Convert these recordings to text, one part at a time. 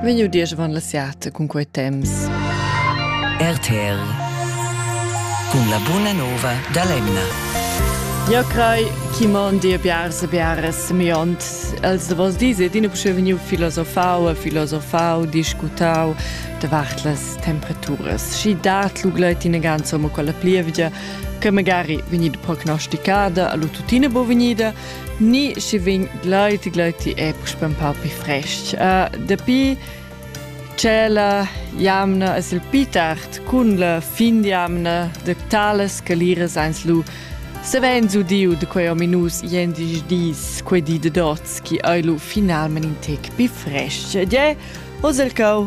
Vegnu diesch van la siata cun quei temps. RTL cun la buna nova da l'emna. Ja crei chi man dir biars e biares miont. Els vos dise dine pusche vegnu filosofau e filosofau, discutau davart las temperaturas. Schi dat lugleit in ganza mo quella plievgia che magari vegnida prognosticada, allo tutine bo vegnida, Ni schi vegn gleiti gleiti è spempau pi frestg. Uh, dapi che la jamna es il pi tard cun la fin d'jamna de talas caliras ans lu savens udiu de quei ominus jendisch dis, quei di de dots, chi ei lu finalment in tec pi frestg. Ed je, oz el cau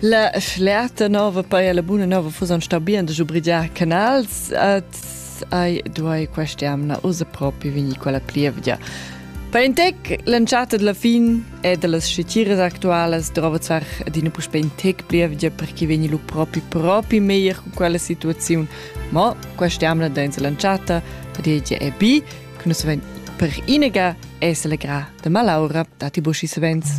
La flerta nova poi la buna nova fusan sta bien da giubrigiar canals et ai duai quest'amna usa propi vegni quella plievgia. Per in tec l'entschatta della fin e dellas scitiras actualas drova zvar adina puspè in tec plievgia perché vegni lu propi propi meglier con quella situaziun. Ma quest'amna dainsa l'entschatta padiegia è bi, che nus ven per inaga e selegra de malaura dati boschi savens.